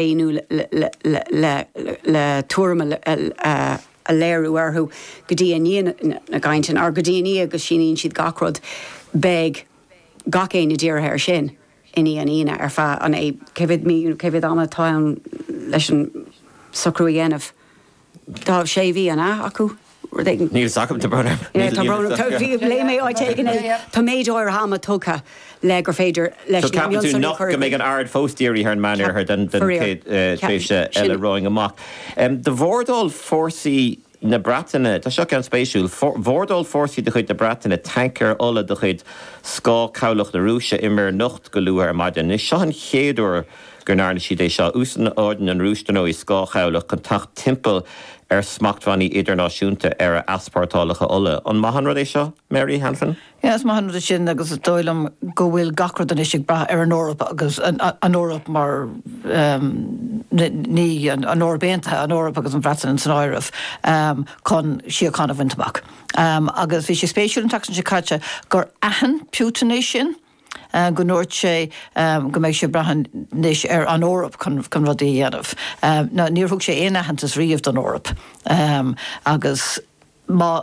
éiniú le tuairim a léiriú orthu go dtí i ndiaidh na gcainteanna, nó go dtí i ndiaidh go síníonn siad gach rud, beidh gach éinne dírithe air sin i ndiaidh an Aoine ar feadh an, cé mhéad mí, cé mhéad ama atá ann leis an socrú a dhéanamh? Tá sé mhí an ea acu, rud éigin. Níl 's agam, tá brón orm. Yeah, tá brón orm. Bhí, léigh mé áit éigin é, tá méid áirithe ama tugtha le gur féidir leis na mionsonraí a chur i gcrích. So ceapann tú nach, go mbeidh an aird fós dírithe ar an Meán Oirthear don chéad tréimhse eile romhainn amach. De bhordáil fórsaí na Breataine, tá seo ceann spéisiúil, bhordáil fórsaí de chuid na Breataine tancaer ola de chuid scáth cabhlach na Rúise i Muir nIocht go luath ar maidin. Anois seo an chéad uair, go ndearna siad é seo. Úsáideann an Rúis, dar ndóigh, scáthchabhlach chun teacht timpeall ar smachtbhannaí idirnáisiúnta ar a easpórtálacha ola. An maith an rud é seo, Mary Hanafin? Yeah, is maith an rud é sin agus is dóigh liom go bhfuil gach rud anois ag brath ar an Eoraip agus an Eoraip mar, em, ní, an Eoraip Aontaithe, an Eoraip agus an Bhreatain in san áireamh, em, chun síocháin a bhaint amach. Em, agus bhí sé spéisiúil an tseachtain seo caite gur aithin Putin é sin, go ndúirt sé go mbeidh sé ag brath anois ar an Eoraip chun rudaí a dhéanamh. Now níor thug sé aon aitheantas riamh don Eoraip agus má,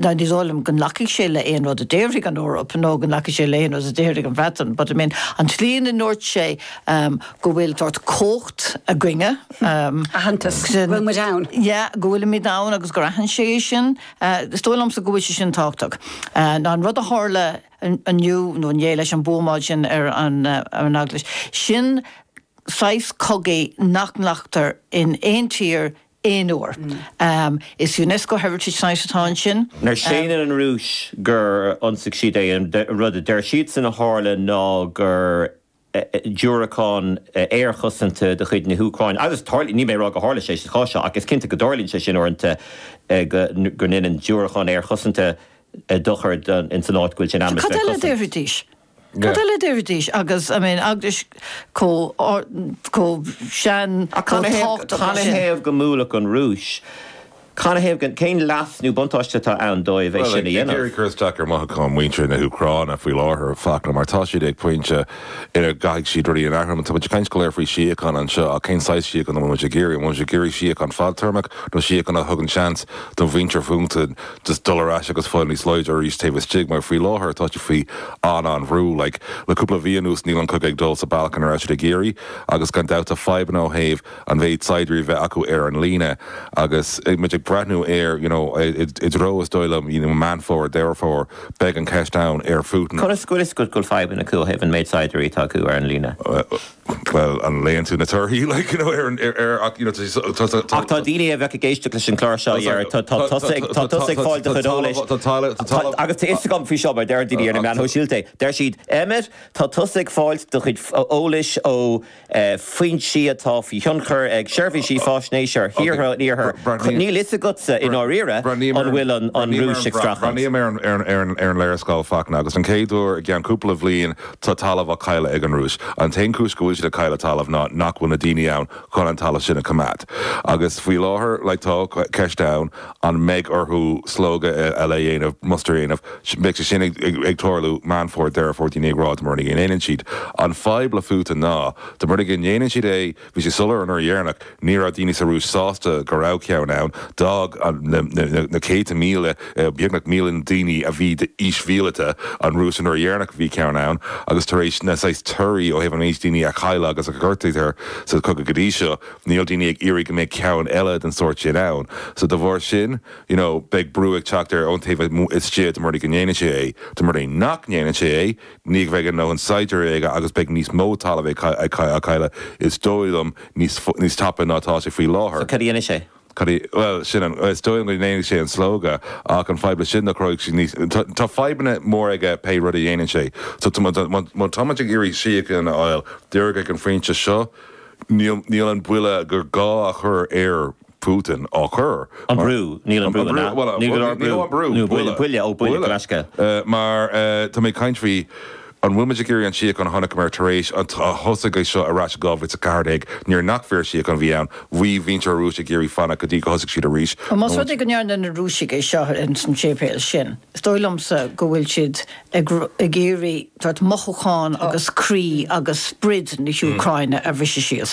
now ní dóigh liom go nglacfaidh sé le aon rud a déarfaidh an Eoraip nó go nglacfaidh sé le aon rud a déarfaidh an Bhreatain but I mean an tslí ina ndúirt sé go bhfuil sórt comhacht againne, aitheantas go bhfuil muid ann, yeah go bhfuilimid ann agus gur aithin sé é sin, is dóigh liomsa go bhfuil sé sin tábhachtach. Now an rud a tharla, inniu nó inné leis an buamáil sin ar an eaglais. Sin saghas cogaidh nach nglactar in aon tír aon uair. Is Unesco Heritage Site atá ansin. Now séanann an Rúis gur ionsaigh siad é, an rud a deir siadsan a tharla ná gur diúracán aerchosanta de chuid na hÚcráine agus tarlaíonn, níl mé ag rá go tharla sé sa chás seo ach is cinnte go dtarlaíonn sé sin uaireanta go ndéanann diúracáin aerchosanta dochar in san áit go bhfuil sé in ainm is bheith cosanta. Cad eile a déarfaidís? Cad eile a déarfaidís agus, I mean, eaglais chomh sean, chomh tábhachtach sin. Canathaobh go mbuailfeadh an Rúis Canathaobh, cén leas nó buntáiste atá ann dóibh é sin a dhéanamh? Bhuel, ag iarraidh cur isteach ar mhothúcháin mhuintir na hÚcráine faoi láthair, faic, mar tá siad ag pointe ina gcaithfidh siad rudaí a athrú. Tá muid ag caint go léir faoi shíocháin anseo, ach cén saghas síocháin a bhfuil muid ag iarraidh? An bhfuil muid ag iarraidh síocháin fadtéarmach, nó síocháin a thugann seans do mhuintir Phutin just dul ar ais agus fáil níos láidre arís taobh istigh, mar faoi láthair tá siad faoi an-an-bhrú. Like, le cúpla mhí anuas níl an cogadh ag dul sa bhealach a raibh siad ag iarraidh, agus gan dabht tá fadhbanna ó thaobh an méid saighdiúirí a bheith acu ar an líne agus muid ag breathnú ar you know i dtreo is dóigh liom you know Meán Fómhair, Deireadh Fómhair beidh an ceist ann ar Phutin. Conas go bhfuil go bhfuil fadhbanna acu ó thaobh an méid saighdiúirí atá acu ar an líne? Bhuel an léann tú na torthaí like you know ar an ar ach you know tá tá tá tá ach tá daoine a bheadh ag éisteacht leis an chlár seo a déarfadh tá tá tusa ag tá tusa ag fáil do chuid eolais tá agus tá fhios agam faoi seo mar deireann daoine ar na meáin shóisialta deir siad Emmet tá tusa ag fáil do chuid eolais ó foinsí atá faoi thionchar ag seirbhísí faisnéise thíortha an iarthair. Níl fhios agatsa, i ndáiríre, an bhfuil an Rúis ag streachailt. Breathnaím ar an léarscáil Fachtna, agus den chéad uair i gceann cúpla bhliain, tá talamh á chailleadh ag an Rúis. An t-aon chúis go bhfuil siad ag cailleadh talaimh ná nach bhfuil na daoine ann chun an talamh sin a choimeád. Agus faoi láthair, like, tá ceist ann, An mbeidh orthu slógadh eile a dhéanamh, mustar a dhéanamh? Beidh sé sin ag tarlú, Meán Fómhair, Deireadh Fómhair, daoine ag rá, dá mba rud é go ndéanann siad. An fadhb le Phutin ná, dá mba rud é go ndéanann siad é, bhí sé soiléir an uair dheireanach, ní raibh daoine sa Rúis sásta go raibh ceann ann, d'fhág na céadta míle, beagnach milliún daoine a bhí d'aois mhíleata, an Rúis an uair dheireanach a bhí ceann ann, agus tar éis na saghas torthaí ó thaobh an méid daoine a cailleadh agus a gortaíodh sa chogadh go dtí seo, níl daoine ag iarraidh go mbeidh ceann eile den sórt sin ann so de bharr sin you know beidh brú ag teacht air ón taobh amuigh istigh dá mba rud é go ndéanann sé é dá mba rud é nach ndéanann sé é ní bheidh a ndóthain saighdiúirí aige agus beidh níos mó talamh á chailleadh is dóigh liom níos níos tapa ná atá sé faoi so láthair cad a dhéanfaidh sé? cad a bhuel sin an is dóigh liom go ndéanfaidh sé an slógadh ach an fadhb leis sin ná cruthóidh sé níos tá tá fadhbanna mór aige pé rud a dhéanann sé so tá muid an má táimid ag iarraidh síocháin a fháil díreach ag an phointe seo Níl an buille gur gá a chur ar Putin á chur. An brú. Níl an brú ina. Níl go leor brú. Níl an brú. Nó buille. Buille. Ó, buille. Gaisce. Mar tá mé ag caint faoi, an bhfuil muid ag iarraidh an tsíocháin a chonaic muid tar éis a thosaigh é seo ar ais in 2014 nuair nach fíorshíocháin a bhí ann, bhí muintir na Rúise ag iarraidh fanacht go dtí go thosaigh siad arís. Más rud é go ndearna na Rúisigh é seo ar an séipéal sin, is dóigh liomsa go bhfuil siad ag iarraidh mothúcháin agus croí agus sprid na hÚcráine a bhriseadh síos.